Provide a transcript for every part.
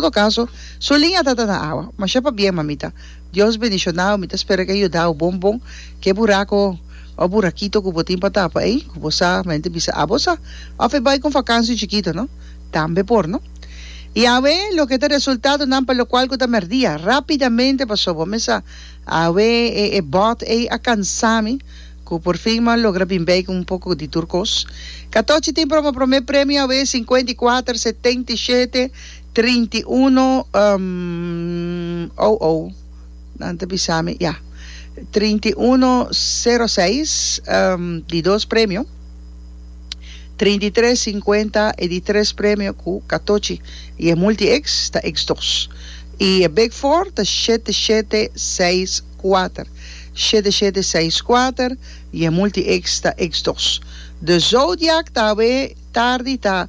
Todo caso, su liña ta ta na awa. Masha pa bien, mamita. Dios bendicionau. Mi ta spera cu e yudau bon bon. Cu e buraco of burakito cu bo tin pa tapa ey, cu bo sa mente bisa abo sa. Of e bay cu un fakansi chikito, no? Tambe por, no? Y awe loke ta resultadonan pa locual cu ta merdia. Rapidamente paso bo mesa awe e e bot ey a cansa mi cu por fin mi a logra bin bay cu un poco di tur cos. Catochi tin promo prome premio awe cincuenta y cuater, setenta y shete. Trinta i uno oh oh nan ta bisa mi ya trinta i uno sero seis di dos premio trinta i tres sinkuenta e di tres premio ku katochi i e multi X ta X dos i e big four ta shete shete seis kuater shete shete seis kuater i e multi X ta X dos de zodiak ta awe tardi ta.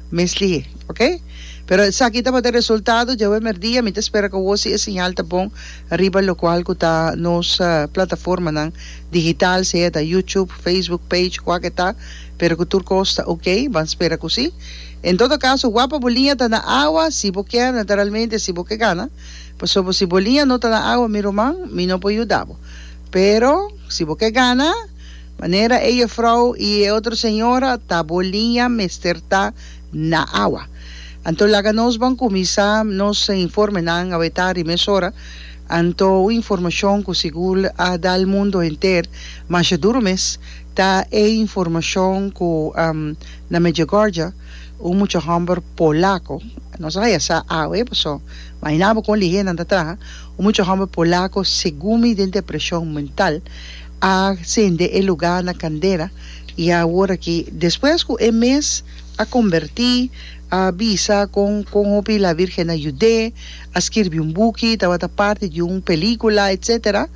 Mestli, ok. Pero esaki tabata e resultado. Djawe merdia mi ta spera cu awor si e señal ta bon riba locual cu ta nos plataformanan digital, sea ta YouTube, Facebook page, cua ke ta, pero cu tur cos ta ok. Ban spera cu si. En todo caso, wak pa bo liña ta na awa, si bo kier, naturalmente, si bo ke gana. Pasobra si bo liña no ta na awa, mi ruman, mi no por yuda bo. Pero, si bo ke gana. Manera e jefrouw i e otro señora ta bo liña mester ta na awa. Anto laga nos ban kuminsá nos informenan a wetá ri mes ora. Anto un informashon ku sigur a dal mundu henter masha duru mes ta e informashon ku na Medjugorje un mucha hòmber polako, nos a haya sa awe paso mañana bo kon lihé nan ta traha, un mucha hòmber polako segumi den depreshon mental. A sende e lugá na kandera, i aworakí, despues ku e mes a kombertí, a bisa kon kon hopi la Virgen a yud'é, a skirbi un buki, tabata parti di un pelíkula, etsetera,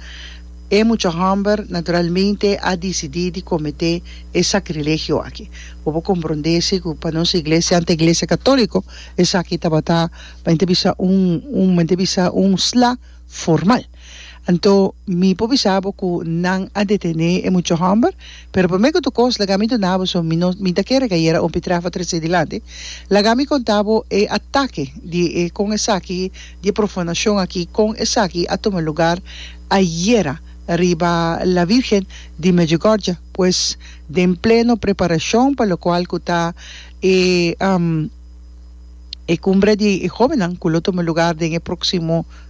e mucha hòmber naturalmente a disidí di kometé e sakrilegio aki. Bo por komprondé si ku pa nos iglesia ante Iglesia Katóliko esaki tabata, men ta bisa un, men ta bisa un sla formal. Anto mi por bisa bo cu nan a detene e mucho homber, pero prome cu tocos laga mi duna bo so mi no mi ta kere gayera un pitraf a trece dilanti, laga mi conta bo e atake di e con esaki di e profanacion aki con esaki a tuma lugar ayera riba La Virgen di Medjugorje pues den pleno preparacion pa locual cu ta e e cumbre di e jobennan cu lo tuma lugar den e proximo